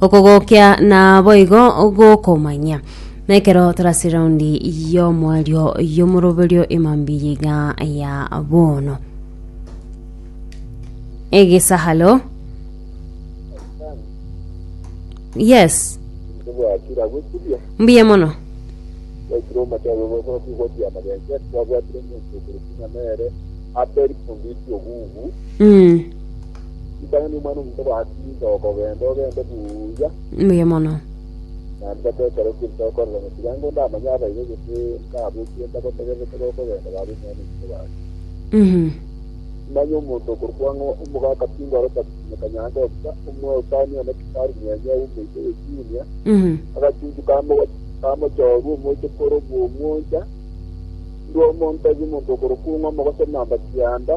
Okogokia naboigo gokomanyia. Na ekero torase raundi y'omwario y'omoroberio emambi y'iga ya bono egesahalo yes mbuya mono mm. Inche okogenda ogende buya. Mbuya mono. Naende bata ekero kiri tokorera motuyango ndamanye abaibori gose nkabochie ntagotegererete gokogenda babe nonya nominto bari. Mhm. Simanya omonto okorokwa ng'a omogaka Pingo aro Taksime Kanyange Obisa, omwesani one Kifaru mwenye ere omoika bwe Junior, Mhm. agachunchu ka mo- ka mochooru omoche kore obw'omwocha, ndua omonto tari omonto okorokwa ng'a omogosomamba kianda,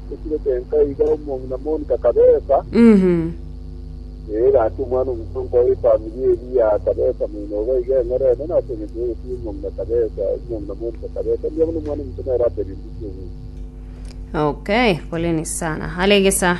Ekiro kento iga omong'ina moni kakabesa, ee, gaki omwana omosonko o efamiri eria akabesa moino obo iga eng'orene, na ase engencho y'ogotiga omong'ina kabesa, omong'ina moni kakabesa, mbuya buna omwana omonto nere aberire ase obonto. Okay, poleni sana. Hale gesa.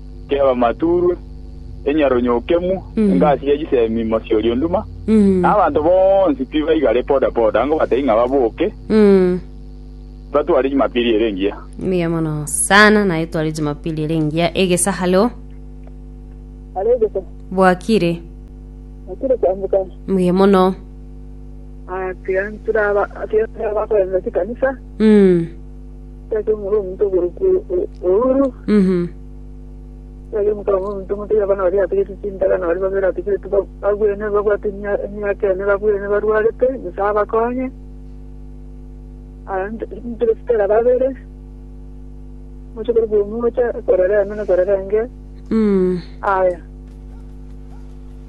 ki'abamaturwe, enyarunyokemu, engasi ye chisemi, mosie oria onduma, na abanto bonsi tibaigare boda boda, ango batebie ng'a baboke, batware Jumapili ere engiya. Mbuya mono sana naye tware jumapili ere engiya egesa halo aregesa bwakire akire kwambuka mbuya mono atiga nturaba atiga nturaba korenda chikanisa mm. Tari omoro omonto oborokwa ouru, Mhm. tari omonto amo omonto omonto oyo abana baria ategetie chindaga na baria babere ategetie ba- bagwene babwate emia- emiaka ene babwene barwarete Nyasae abakonye Aa, nto- ntore Stella babere moche korwa omocha korera eme na korera enge Mm. aya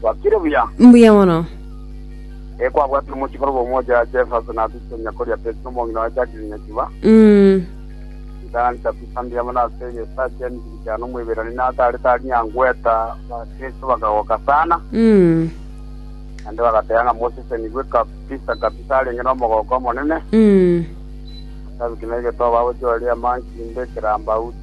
Gwakire buya? Mbuya mono. Eh, kwabwatire omochikoro bw'omwocho ya Jefferson ase chisonya koria Pesi omong'ina wa Jacqueline Nyachuba. Mm. Ntancha kwisambia amo nase egesaa kia emibiri kiane Omoiberania natarete aria angweta Abakristo bakagoka sana, Mm. naende bagateba ng'a mosesenigwe kabisa kabisa arenge n'omogooko omonene. Mm. Ase abwo ki naigete obagochi oria Manki Mbe Kirambauti.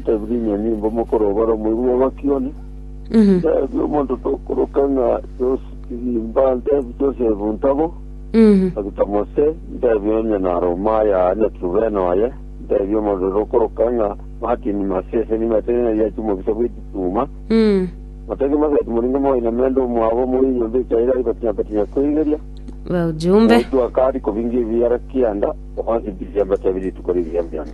Ntebie inwe nimbo mokorobara omoibi bwa Bakioni? Ntebie omonto tokoroka ng'a Josi Kigimba, ntebie Josefu Ntabo, Dr. Mose, ntebie onye naroma aye aa Nyaturubena oye, ntebie omonto tokoroka ng'a Martin Masese nimetire ng'a yachi omobisa bw'egetuma, Mateke Maseti moringe moiname ande omwabo omore enyomba echaire ari batinya batinya koigeria, Baujumbe. Omoitwa akari kobinga ebiara kianda, obansibisia mbatebie rituko riria mbiana.